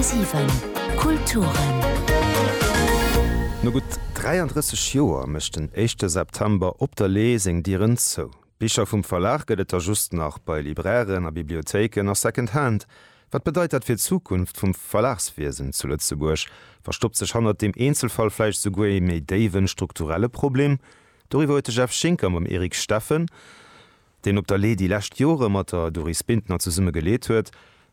10,7 Kulturen. No gutt 33 Joer mécht den éischte September Op der Lee seng Dieren zou. Bicher vum Verlag gëtt et der just nach bei Librairen a Bibliothéiken a Secondhand. Wat bedeit dat fir d'Zukunft vum Verlagswiesen zu Lëtzebuerg? Verstoppt sech hannert deem Eenzelfall vläicht esouguer ee méi déiwen strukturelle Problem? Doriwwer huet de Jeff Schinker mam Eric Steffen, deen op der Lee déi lescht Jore mat der Doris Bintner zesumme geleet huet,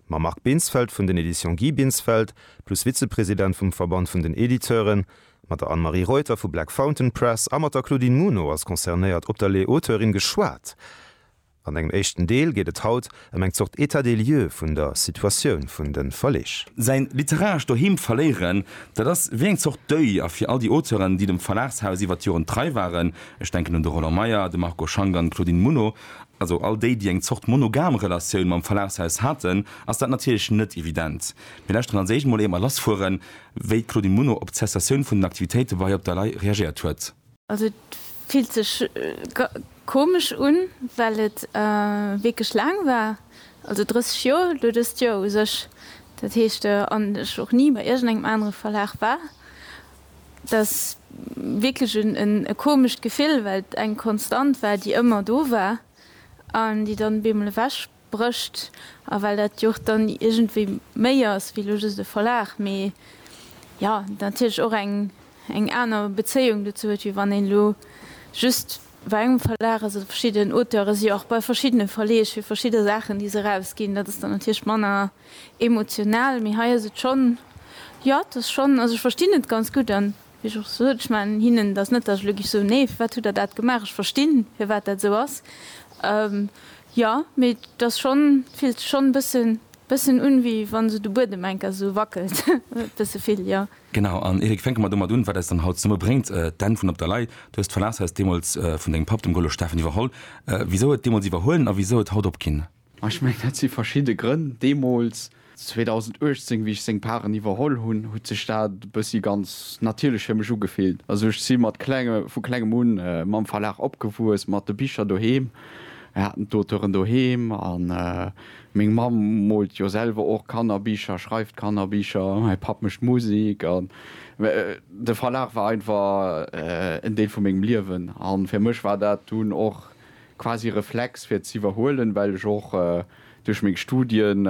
mam Marc Binsfeld vun den Editions Guy Binsfeld plus Vizepresident vum Verband vun den Editeuren, mat der Anne-Marie Reuter vu Black Fountain Press a mat der Claudine Muno als concernéiert op der Lee Auteurin geschwat. An engem éischten Deel geet et haut ëm eng Zort État des lieux vun der Situatioun vun de Verleeg. Säin literarescht Doheem verléieren, dat ass wéi eng Zort Deuil a fir all déi Auteuren, déi dem Verlagshaus iwwer d'Joren trei waren, Ech denken un de Roland Meyer, de Marco Schank an d'Claudine Muno, also all déi, déi eng Zort monogam Relatioun mam Verlagshaus haten, ass dat natierlech net evident. Mir lauschteren als éischt mol, ier mer lassfueren, wéi d'Claudine Muno op d'Cessatioun vun den Aktivitéite bei Op der Lay reagiert huet. Also et fillt sech komesch un, well et wierklech laang war, also 30 Joer elo dëst Joer u sech, dat heescht an ech och ni bei iergendengem anere Verlag war, Et ass wierklech e komescht Gefill, well et eng Konstant war, déi ëmmer do war an déi dann op eemol ewech brécht. A well dat jo och dann iergendwéi méi ass wéi elo just e Verlag, mee jo natierlech och eng aner Bezéiung dozou huet, wéi wann een elo just bei engem Verlag ass oder verschidden Auteure si jo och bei verschiddene Verleeg fir verschidde Saachen, déi se erausginn. Dat ass dann natierlech manner. Emotional, mee hei ass et schonn, jo, et ass schonn, also ech verstinn et ganz gutt an wéi ech och sot, ech man hinnen dat net, datt ech elo géif soen, nee, firwat hutt Der dat gemaach, ech verstinn, firwat dat esou ass, jo, mee et ass schonn, et fillt sech schonn e bësse bëssen un, wéi wa esou de Buedem eng Kéier esou wackelt, e bësse vill, jo. Genau, an Eric, fänke mer domat un, wat eis dann haut zesummen bréngt, d'Enn vun Op der Lay. Du hues d'Verlagshaus deemools vun dengem Papp, dem Golo Steffen, iwwerholl. Wisou et deemools iwwerhuelen a wisou et haut opginn? Ma ech mengen, dat si verschidde Grënn. Deemools, 2018, wéi ech seng Paren iwwerholl hunn, huet sech dat e bëssi ganz natierlech fir mech ugefillt. Also ech si mat klenge, vu klengem un mam Verlag opgewuess, mat de Bicher doheem. Mir haten d'Auteuren doheem a meng Mamm moolt jo selwer och Kannerbicher, schreift Kannerbicher, mäi Papp mécht Musek. An de Verlag war einfach en Deel vu mengem Liewen. A fir mech war dat dunn och quasi Reflex fir z'iwwerhuelen, well ech och duerch meng Studien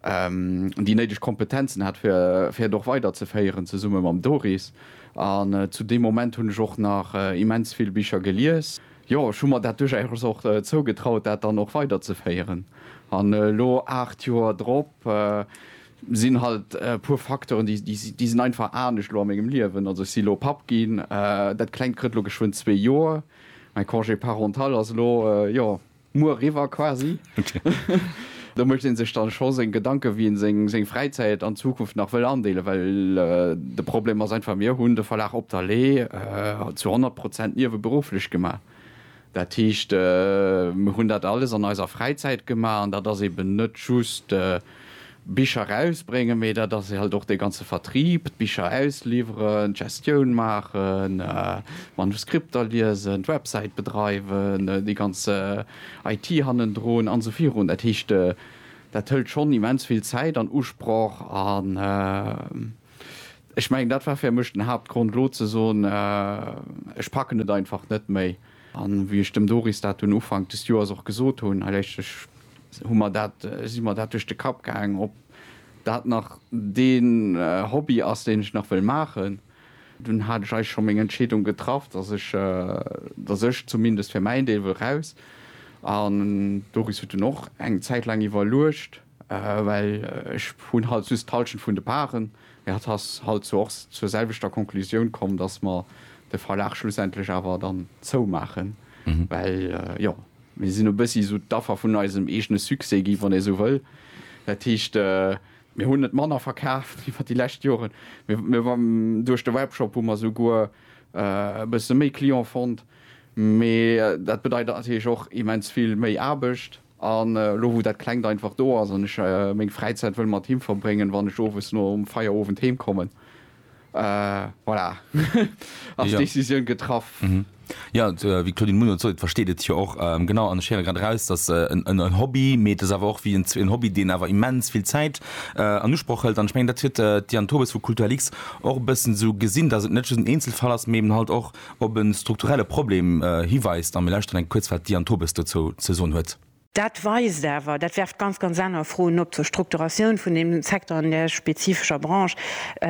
déi néideg Kompetenzen hat fir fir et och weiderzeféieren zesumme mam Doris. An zu deem Moment hunn ech och nach immens vill Bicher gelies. Jo, ech hu mer dat duerchaus och zougetraut dat dann och weiderzeféieren. An elo 8 Joer drop sinn halt e puer Facteuren déi déi sinn einfach anescht elo a mengem Liewen. Also ech si elo Papp ginn, dat klengt krëtt elo geschwënn zwee Joer. Mäi Congé parental ass elo, jo, muer eriwwer quasi. Do mécht ee sech dann scho seng Gedanken, wéi een seng Fräizäit an Zukunft nach wëll andeelen, well de Problem ass einfach, mir hunn de Verlag Op der Lee zu 100 Prozent nieweberufflech gemaach. Dat heescht, mir hunn dat alles an eiser Fräizäit gemaach an dat ass eben net just Bicher rausbréngen, mee dat ass halt och dee ganze Vertrieb, d'Bicher ausliwweren, d'Gestioun maachen, d'Manuskripter liesen, d'Websäit bedreiwen, déi ganz IT hannendrun an esou virun. Dat heescht, dat hëlt schonn immens vill Zäit an Usproch an ech mengen, dat war fir mech den Haaptgrond elo ze soen, ech packen et einfach net méi. An wéi ech dem Doris dat dunn Ufank des Joers och gesot hunn, hei léisst sech hu mer dat, si mer dat duerch de Kapp gaang, ob dat nach dee Hobby ass, deen ech nach wëll maachen. Dunn hat ech eigentlech scho meng Entscheedung getraff, dass ech, dass ech zumindest fir mäin Deel wëll raus. An d'Doris huet dunn och eng Zäit laang iwwerluecht, well ech hunn halt just d'Hallschent vun de Parten. Mee hatt ass halt zwar och zur selwechter Conclusioun komm, dass mer de Verlag schlussendlech awer dann zoumaachen, well jo, Mir sinn e bëssi esou d'Affer vun eisem eegene Succès gi wann ee sou wëll. Dat heescht, mir hunn net manner verkaaft iwwer déi lescht Joren, mee duerch de Webshop hu mer souguer e bësse méi Client fonnt. Mee dat bedeit natierlech och immens vill méi Aarbecht. An elo wou dat Klengt einfach do ass an ech meng Fräizäit wëll mat him verbréngen, wann ech owes nom Feierowend heem kommen, Voilà, ass d'Decisioun getraff. Jo, wéi d'Claudine Munoz sot, et versteet et jo och. Genau, an ech héiere grad eraus, dass en Hobby, mee et ass awer och wéi en Hobby, deen awer immens vill Zäit an Usproch hëlt. An ech mengen, dat huet d'Diane Tobes vu Kulturlix och e bëssen esou gesinn, dass et net just en Eenzelfall ass, mee eben halt och op e strukturelle Problem hiweist. A mir lauschteren eng kuerz, wat d'Diane Tobes dozou ze soen huet. Dat weist awer, dat werft ganz, ganz aner Froen op zur Strukturatioun vun deem Secteur an där spezifescher Branche,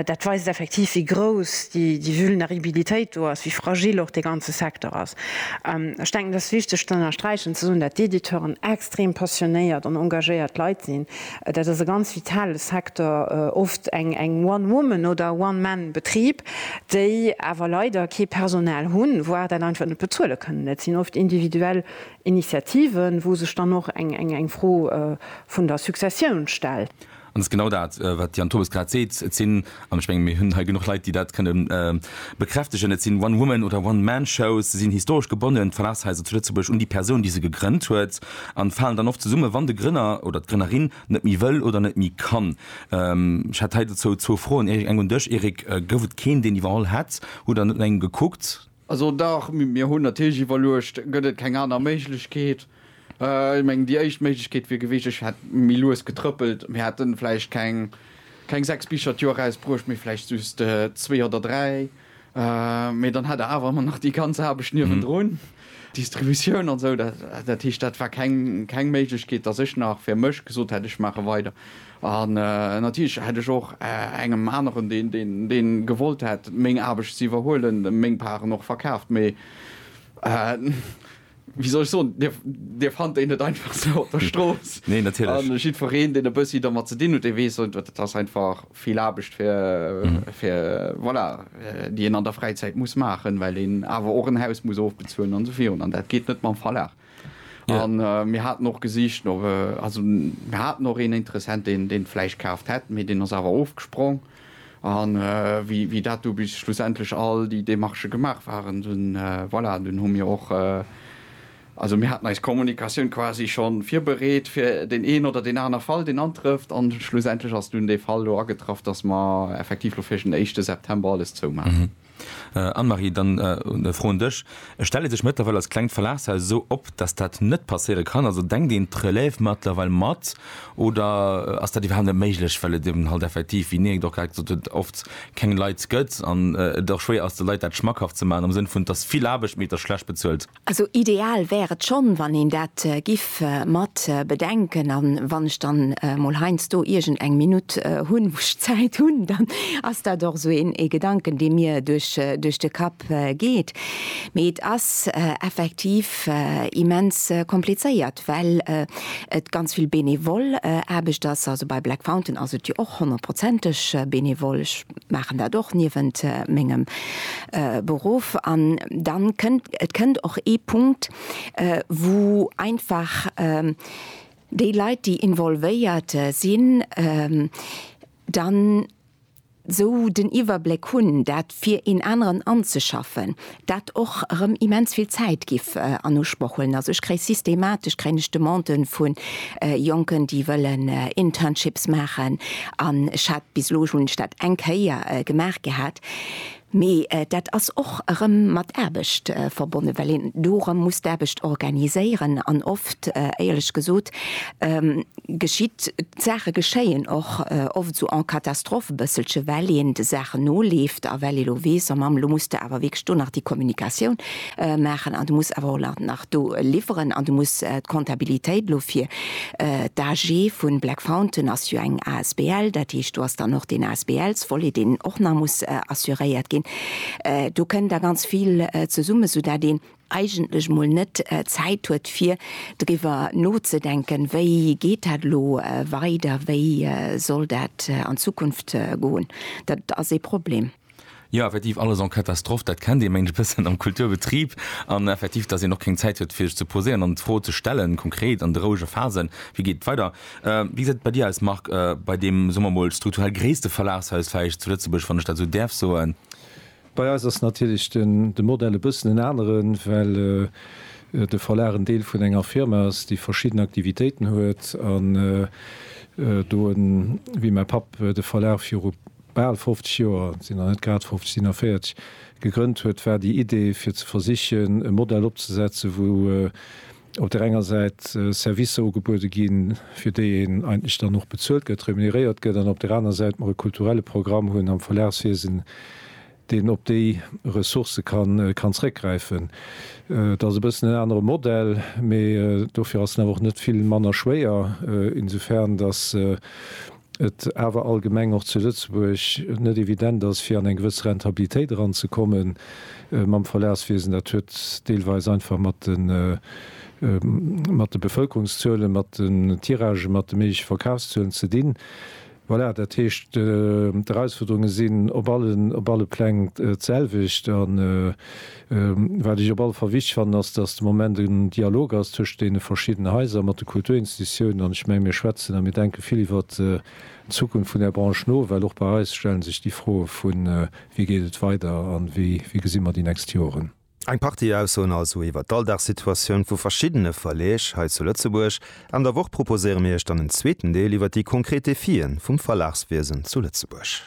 dat weist effektiv, wéi grouss déi Vulneribilitéit do ass, wéi fragil och dee ganze Secteur ass. Ech denken, et ass wichteg ze ënnersträichen, ze soen, dat d'Editeuren extrem passionéiert an engagéiert Leit sinn. Dat ass e ganz vitale Secteur, oft eng One Woman oder One Man Betrib, déi awer leider kee Personal hunn, voire dat einfach net bezuele kënnen. Dat sinn oft individuell Initiativen, wou sech dann och eng Fro vun der Successioun stellt. An dat ass genau dat, wat de Jan Thomas grad seet. Et sinn, an ech mengen, mir hunn hei genuch Leit, déi dat kënne bekräftegen, et sinn One-Woman oder One-Man-Shows. Se sinn historesch gebonnen, d'Verlagshaiser zu Lëtzebuerg, un déi Persoun, déi se gegrënnt huet, a falen dann oft zesummen, wann de Grënner oder d'Grënnerin net méi wëll oder net méi kann. Ech hätt hei dozou zwou Froen, Eric. Eng un dech, Eric, Gouf et keen, deen iwwerholl hätt? Hutt Der net no engem gekuckt? Also dach, mir hunn natierlech iwwerluecht, gëtt et keng aner Méiglechkeet? Ech mengen, déi éischt Méiglechkeet wier gewiescht, ech hätt méi lues getrëppelt, mir hätte vläicht keng sechs Bicher d'Joer erausbruecht, mee vläicht just zwee oder dräi. Mee dann hätt Der awer ëmmer nach déi ganz Aarbecht niewendrun, d'Distributioun an esou. Dat heescht, dat war keng Méiglechkeet, datt ech nach fir mech gesot hätt, ech maache weider. An natierlech hätt ech och engem aneren, deen gewollt hätt meng Aarbecht ze iwwerhuelen, meng Paren och verkaaft. Mee wéi soll ech soen, Dir fannt en net einfach sou op der Strooss. Nee, natierlech. A jiddwereen, deen e bëssi domat ze dinn huet, dee weess, dat ass einfach vill Aarbecht, fir, voilà, déi een an der Fräizäit muss maachen, well een awer och en Haus muss ofbezuelen an esou virun. An dat geet net mam Verlag. An mir haten och gesicht no, also mir haten och een Interessent, deen deen d'Fläich kaaft hätt, mee deen ass awer ofgesprong. An wéi wéi dat du bis schlussendlech all déi Démarchë gemaach waren, dunn voilà, dunn hu mir och, also mir haten eis Kommunikatioun quasi schonn virbereet fir deen een oder deen aner Fall, deen antrëfft. An schlussendlech ass dunn dee Fall elo agetraff, dass mer effektiv elo fir den éischte September alles zoumaachen. Anne-Marie, dann e Fro un dech, Stellt ee sech mëttlerweil als klengt Verlagshaus esou op, datt dat net passéiere kann? Also denkt een d'Relève mëttlerweil mat oder ass dat iwwerhaapt net méiglech, well et eben halt effektiv, wéi Niek et och grad gesot huet, oft keng Leit gëtt an et och schwéier ass de Leit dat schmackhaft ze maachen am Sënn vun, et ass vill Aarbecht, mee et ass schlecht bezuelt? Also ideal wär et schonn, wann een dat giff mat bedenken. An wann ech dann mol heiansdo iergend eng Minutt hunn, wou ech Zäit hunn, dann ass dat och esou een Gedanken, dee mir duerch de Kapp geet. Mee et ass effektiv immens komplizéiert, well et ganz vill benevol Aarbecht ass. Also bei Black Fountain ass et jo och honnertprozenteg benevol. Maachen dat och niewent mengem Beruff. An dann kënnt, et kënnt och ee Punkt, wou einfach déi Leit, déi involvéiert sinn, dann esou den Iwwerbléck hunn, dat fir een aneren anzeschaffen. dat och erëm immens vill Zäit giff an Usproch huelen. Also ech kréie systematesch kréien ech Demanden vu Jonken, déi wëllen Internships maachen an ech hat, bis elo hunn ech dat eng Kéier gemaach gehat, mee dat ass och erëm mat Aarbecht verbonnen, well een do erëm muss d'Aarbecht organiséieren an oft, éierlech gesot, geschitt, d'Saache geschéien och oft esou en catastrophe e bësselche well een de Saachen noleeft a well ee lo weess, oh Mamm, elo muss de awer wierklech do nach déi Kommunikatioun maachen an du muss awer och nach do liwweren an du muss d'Kontabilitéit lo fir d'AG vu Black Fountain ass jo eng asbl, dat heescht do ass dann och deen ASBL-Volet deen och nach muss assuréiert ginn. Do kënn da ganz vill zesummen, esou dat een, eigentlech mol net Zäit huet fir driwwer nozedenken, wéi geet dat elo weider, wéi soll dat an Zukunft goen. Dat ass ee Problem. Jo, effektiv, alles en catastrophe, dat kennt ee mengt e bëssen am Kulturbetrib. An effektiv, datt een och keng Zäit huet fir sech ze poséieren an d'Fro ze stellen, konkret an de rouege Phasen, wéi geet et weider. Wéi gesäit et bei dir aus Marc, bei deem, soe mer mol, strukturell gréisste Verlagshaus vläicht zu Lëtzebuerg, wann ech dat esou däerf soen? Bei eis ass natierlech de Modell e bëssen en aneren, well de Verlag en Deel vun enger Firma ass, déi verschidden Aktivitéiten huet. An do en, wéi mäi Papp, de Verlag viru bal 50 Joer, sinn der net grad 50, sinn der 40, gegrënnt huet, war déi Idee, fir ze versichen, e Modell opzesetzen, wou op där enger Säit Servicer ugebuede ginn, fir déi een eigentlech dann och bezuelt gëtt, remuneréiert gëtt, an op där aner Säit mer e kulturelle Programm hunn am Verlagswiesen, deen op déi Ressourcë kann zréckgräifen. Dat ass e bëssen en anere Modell, mee dofir ass en awer och net vill manner schwéier, insofern datt et awer allgemeng och zu Lëtzebuerg net evident ass, fir an eng gewëss Rentabilitéit eranzekommen mam Verlagswiesen. Dat huet deelweis einfach mat de Bevëlkerungszuelen, mat den Tiragen, mat de méigleche Verkafszuelen ze dinn. Voilà, dat heescht, d'Erausfuerderunge sinn op alle Pläng d'selwecht. Wat ech op alle Fall wichteg fannen, ass, dass de Moment en Dialog ass tëscht deene verschiddenen Haiser, mat de Kulturinstitutiounen. An ech mengen, mir schwätzen a mir denke vill iwwert d'Zukunft vun där Branche no, well och bei eis stelle sech déi Froe vu wéi geet et weider a wéi gesi mer déi nächst Joren. Eng Partie Aussoen also iwwert d'Alldagssituatioun vu verschiddene Verleeg hei zu Lëtzebuerg. Enn der Woch proposéiere mir Iech dann en zweeten Deel iwwert déi konkret Defien vum Verlagswiesen zu Lëtzebuerg.